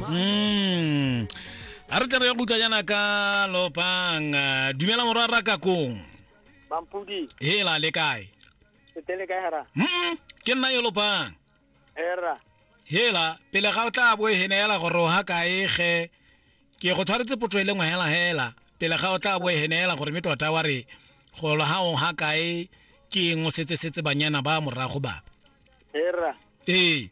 Mm. A re tle re ya gutla yana ka lopang Ah, dumela morwa ra ka kong mampudi hela le kae setele kae hara mm ke nna yo lopang era hela pele ga o tla bo hene hela gore o ha kae ge ke go tshwaretse potso e le ngwe hela hela pele ga o tla bo hene hela gore me tota wa re go lo ha o ha kae ke eng o setse setse banyana ba morago ba era ee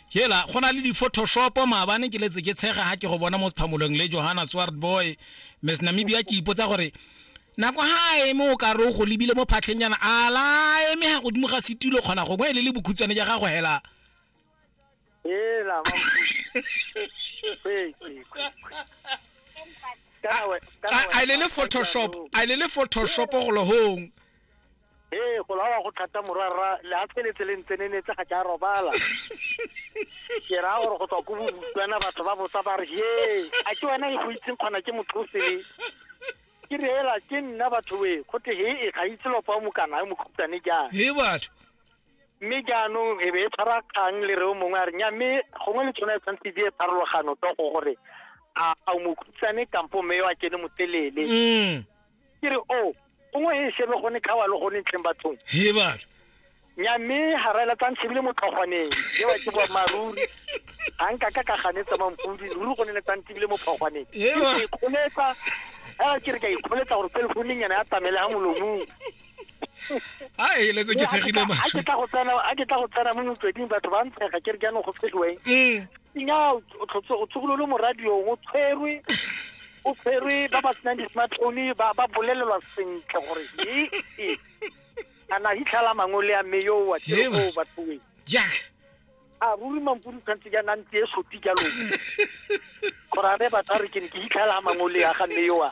hela go na le di-photoshopo maabane ke letse ke tshega ga ke go bona mo sephamolong le johanna swart boy miss namibia ke ipotsa gore nako ga a eme o ka re o go lebile mo phatlheng yana a la eme ga godimo ga setulo kgona gongwe e le le bokhutshwane ja gago hela hela a le le photoshop a le le photoshop go lohong ee go lawa go thata morwarra le a tshweletse le ntsenenetse ga ke a robala ke raya gore go tswa ko bobutswana batho ba botsa ba re ye a ke wena e go itseng kgona ke motlhosele ke re hela ke nna batho we go te he e ga itse lopa o mokana yo mokhutane jang he batho mme jaanong e be e tshwara kgang le re o mongwe a re nya mme gongwe le tshwana e tshwanetse di e pharologano to go gore a a o mokhutshwane kampo mme yo a kene motelele mm. ke re o gongwe he shebe gone khawa le gone ntleng bathong he bana nya mme ga ra ela tsang shebile motlhogwaneng ke ba ke boa maruri ga nka ka ka ganetsa mampudi ruri gone le tsang tibile mo phogwaneng ke ikgoletsa a ke re ka ikgoletsa gore telefouneng yana ya tamele ga molomong a eletse ke tshegile masho a ke tla go tsena a ke tla go tsena mo motsweding batho ba ntshega ke re jaanong go fediweng mm. nya o tshokololo mo radiong o tshwerwe o tshwerwe ba ba senang di-smartphone ba ba bolelelwa sentle gore e e a na hitlhala mangole a mme yo wa teo bathoweng jack a ruri mampodi tshwanetse jaana ntse e sopi jalo gore a re batho a re ke ne ke hitlhela mangole ya ga mme yo a